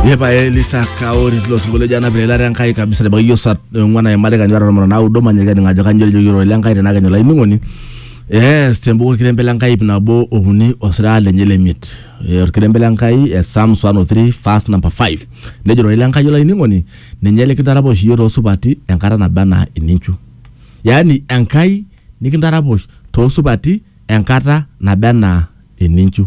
Yepa Elisa Kaori tilo sinkolio ojo anap eilata Enkai kabisa te bakiyo saa ong'uan aimari kanyora tomon naudo manyaki aning ajo kanyioo ejoki ororei Lenkai tenaa kenyo olainining'oni. Yes, tembuku orkirembe Lenkai ip nabo okuni osiraa lenye le miet. Eh, Orkirembe Lenkai eh, Psalms 103 verse number 5. Nejo ororei Lenkai olainining'oni ninye likintaraposh iyiook toosupati enkata naba anaa eninchu. Yaani Enkai nikintaraposh toosupati enkata naba anaa eninchu.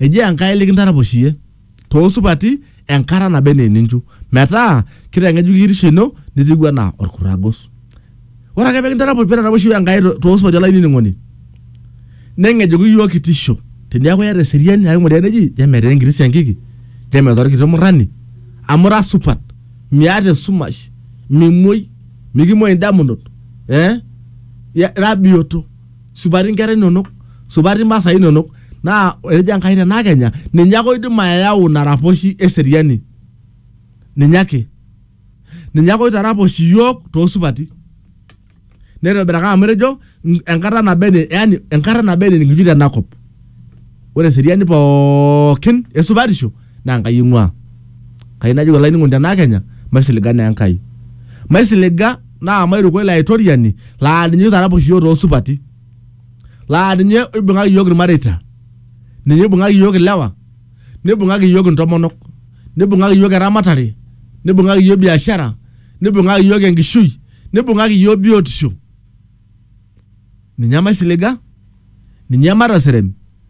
eji enkai likintaraposhiyie toosupati enkata naba enaa eninchu metaa kitang'ejuk kitisho ino nitiu anaa orkurragos ore ake pekintaraposh petaraposhi iyiook enkai to- toosupati olainining'oni neng'ejuku iyiook kitisho teniaku iyata eseriani ake ng'oria neji je metaa enkiti siankiki je metaa orkiti murrani amu ira supat miata esumash mimuoi mikimuoi indamunot eh, ya- ira biyioto. supati inkera inonok supati imasaa inonok naa etejo Enkai tenaa kenya ninye ake oidim ayau ina raposhi eseriani ninye ake ninye ake oitaraposh iyiook toosupati neitobiraka amu etejo "N- enkata naba ene yani enkata naba ene nikitii tenakop ore eseriani pookin esupatisho naa Enkai eing'uaa. Kayieu najoki olainining'oni tenaa Kenya, maisiliga naa Enkai. Maisiliga naa mairuko ilo aitoriani laa ninye oitaraposh iyiook too supati. Laa ninye oibung'aki iyiook ilmareita. Ninye oibung'aki iyiook ilewa, neibung'aki iyiook intomonok, neibung'aki iyiook eramatare, neibung'aki iyiook biashara, neibung'aki iyiook enkishui, neibung'aki iyiook biotisho. Ninye maisiliga, ninye matasirem.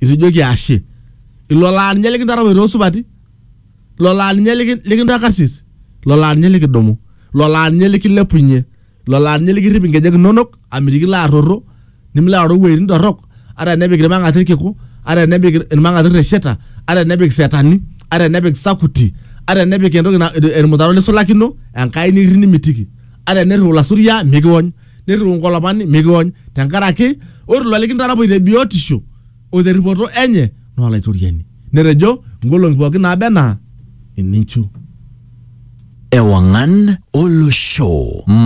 itu ijoki ashe ilo laa ninye likintarapoi toosupati ilo laa ninye liki- likintaa karsis ilo laa ninye likidumu ilo laa ninye likilepunye ilo laa ninye likirrip inkejek inonok amitiki ilo arrorro nimilo aoro iwuejitin torrok ata enepik irmang'ati irkiku ata enepik irmang'ati irresheta ata enepik isetani ata enepik isakuti ata enepik entoki na- irmutaro lisulakino enkai nikirrip nimitiki ata enirriu ilasuria mikiwony nirriu nkolopani mikiony tenkaraki ore ilo likintarapoi te biotisho o terripoto enye naa olaitoriani netejo nkolong'i pookin naaba enaa eninchu Ewangan Olosho.